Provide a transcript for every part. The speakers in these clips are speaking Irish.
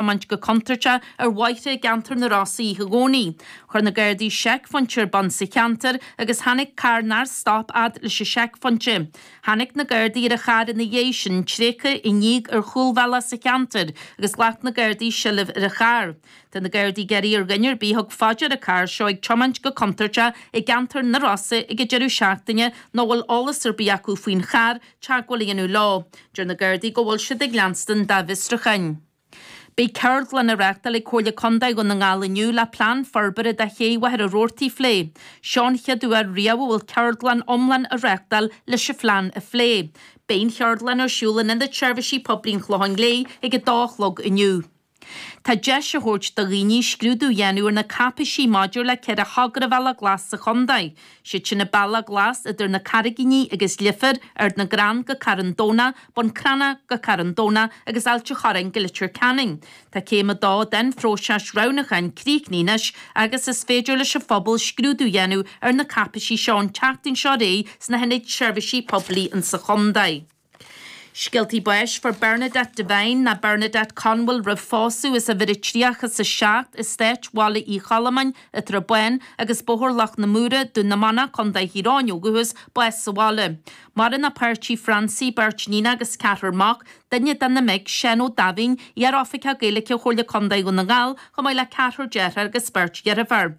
tiomáint go contúirteach ar bhóithre i gceantar na Rosa oíche Dhomhnaigh. Chuir na Gardaí seicphointe ar bun sa cheantar agus tháinig carr nár stop fhad leis an seicphointe. Tháinig na Gardaí ar an charr ina dhiaidh sin, tréigthe i ndíog ar chúlbhealach sa cheantar agus ghlac na Gardaí seilbh ar an charr. Tá na Gardaí ag iarraidh ar dhuine ar bith a thug faoi dear an carr seo ag tiomáint go contúirteach i gceantar na Rosann ag an deireadh seachtaine nó a bhfuil eolas ar bith acu faoin charr teagmháil a dhéanamh leo. Deir na Gardaí go bhfuil siad ag leanstan dá bhfiosrucháin. Beidh ceardlann a reachtáil ag Comhairle Condae Dhún na nGall inniu le plean forbartha do ché Mhachaire Rabhartaigh a phlé. Seo an chéad uair riamh a bhfuil ceardlann iomlán a reachtáil leis an phlean a phlé. Beidh an cheardlann ar siúl in Ionad Seirbhísí Poiblí an Chlocháin Léith ag 2 a chlog inniu. Tá deis a thabhairt do dhaoine scrúdú a dhéanamh ar na cáipéisí maidir le ceithre thogra bealach glas sa chontae, siad sin na Bealaí Glasa idir na Carraigíní agus Leifear, Ard na gCrann go Carn Domhnach, Bun Cranncha go Carn Domhnach agus Ailt an Chorráin go Litir Ceanainn. Tá céim a dó den phróiseas roghnúcháin críochnaithe anois agus is féidir leis an phobal scrúdú a dhéanamh ar na cáipéisí seo an tseachtain seo réidh sna hIonaid Seirbhísí Poiblí insa chontae. Scéaltaí báis fuair Bernadette Devine nó Bernadette Conwell roimh phósadh as uimhir a 37 Estáit Bhaile Uí Chollamáin, An tSrath Bán agus Bóthar Loch na Mór, Dún na Manach, Co. Thír Eoghain ó dhúchas, bás sa bhaile. Maireann a páirtí Francie, beirt níon agus ceathrar mac, duine de na mic, Seán Ó Daimhín, iar-oifigeach Gaeilge Chomhairle Contae Dhún na nGall, chomh maith le ceathrar deartháir agus beirt dheirfiúr.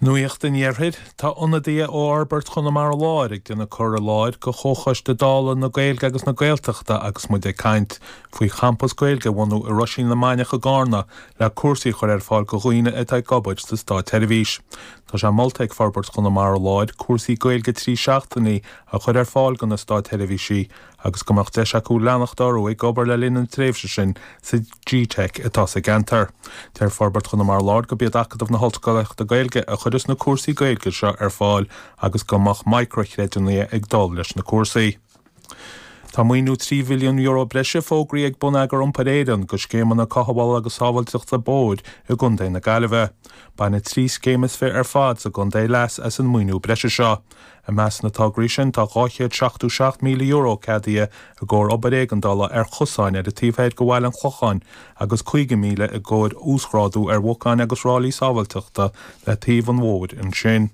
Nuacht an Iarthair, Tá ionadaithe ó Fhorbairt Chonamara Láir ag déanamh cur i láthair go Chomhchoiste Dála na Gaeilge agus na Gaeltachta agus muid ag caint faoi champas Gaeilge a bhunú i Roisín na Mainiach i gCárna le cúrsaí a chur ar fáil go dhaoine atá ag obair sa státsheirbhís. Tá sé molta ag Forbairt Chonamara Láir cúrsaí Gaeilge trí seachtainí a chur ar fáil do na státsheirbhísigh agus go mbeadh deis acu leanacht orthu ag obair le linn na tréimhse sin sa GTeic atá sa gceantar. Deir Forbairt Chonamara Láir gob iad Acadamh na hOllscolaíochta Gaeilge a chuireas na cúrsaí Gaeilge seo ar fáil agus go mbeadh micrea-chreidiúnaithe ag dul leis na cúrsaí. Tá maoiniú €3 mhilliún breise fógraí ag Bonneagar Iompair Éireann go scéimeanna cothabhála agus sábháilteachta bóthair i gContae na Gaillimhe. Bainfidh trí scéim is fiche ar fad sa gcontae leas as an maoiniú breise seo. I measc na dtograí sin, tá €277,000 ceadaithe i gcomhair obair éigeandála ar chosáin ar an taobh thoir de bhaile an Chlocháin agus €50,000 i gcomhair uasghrádú ar bhocáin agus ráillí sábháilteachta le taobh an bhóthair ansin.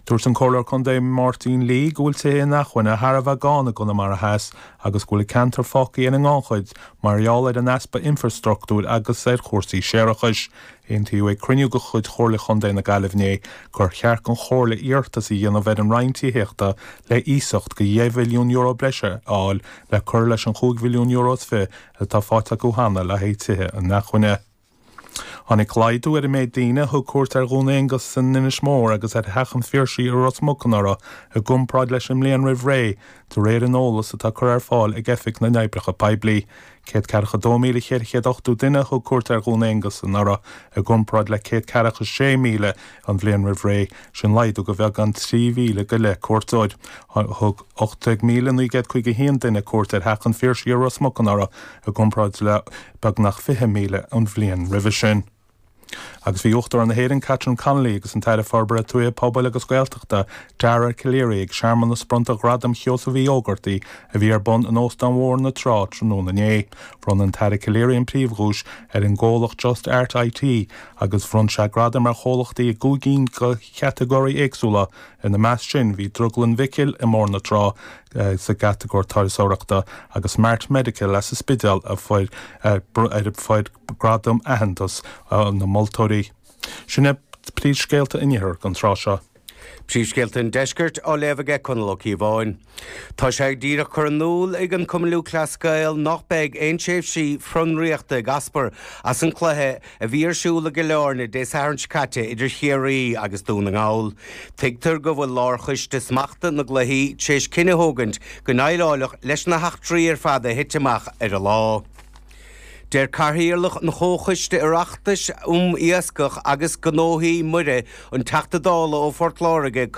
Dúirt an Comhairleoir Contae Máirtín Lee go bhfuil tithe inacmhainne thar a bheith gann i gConamara Theas agus go bhfuil an ceantar fágtha ar an ngannchuid mar gheall ar an easpa infreastruchtúir agus ar chúrsaí séarachais. Aontaíodh ag cruinniú de chuid Chomhairle Chontae na Gaillimhe inné gur cheart don Chomhairle iarratas a dhéanamh ar an Roinn Tithíochta le hiasacht de €2 mhilliún breise a fháil le cur leis an €5 mhilliún is fiche atá faighte acu cheana le haghaidh tithe inacmhainne. Tháinig laghdú ar an méid daoine a thug cuairt ar Dhún Aonghasa in Inis Mór agus ar Theach an Phiarsaigh i Ros Muc anuraidh i gcomparáid leis an mbliain roimh ré, de réir an eolais atá curtha ar fáil ag Oifig na nOibreacha Poiblí. Céad ceathracha a dó míle ceithre chéad ochtú duine a thug cuairt ar Dhún Aonghasa anuraidh, i gcomparáid le céad ceathracha a sé míle an bhliain roimh ré, sin laghdú de bheagán trí mhíle go leith cuairteoir. Thug ocht déag míle naoi gcéad caoga a haon duine cuairt ar Theach an Phiarsaigh i Ros Muc anuraidh, i gcomparáid le beagnach fiche míle an bhliain roimhe sin. Agus bhí Uachtarán na hÉireann, Catherine Connolly, agus an tAire Forbartha Tuaithe, Pobail agus Gaeltachta, Dara Calleary, ag searmanas bronnta Ghradam Sheosaimh Uí Ógartaigh a bhí ar bun in Óstán Bhóthar na Trá tráthnóna inné. Bhronn an tAire Calleary an phríomhdhuais ar an gcomhlacht Just Art IT agus bhronn sé gradaim ar chomhlachtaí i gcúig gcinn de chatagóirí éagsúla, ina measc sin bhí Drioglann Mhicil i mBóthar na Trá sa gcatagóir turasóireachta agus Mart Medical as an Spidéal a fuair gradam aitheantas na moltóirí. Sin é príomhscéalta an Iarthair don tráth seo. Príomhscéalta an Deiscirt á léamh aige Conall Ó Cíobháin. Tá sé díreach curtha in iúl ag an Cumann Lúthchleas Gael nach beidh aon tréimhsí fionraíochta ag eascairt as an cluiche a bhí ar siúl i gCill Airne Dé Sathairn seo caite idir Chiarraí agus Dún na nGall. Tuigtear go bhfuil Lárchoiste Smachta na gCluichí tar éis cinneadh a thógaint go ndéileáladh leis na heachtraí ar fad a thit amach ar an lá. Deir Cathaoirleach an Chomhchoiste Oireachtais um Iascach agus Gnóthaí Muirí, an Teachta Dála ó Phort Láirge,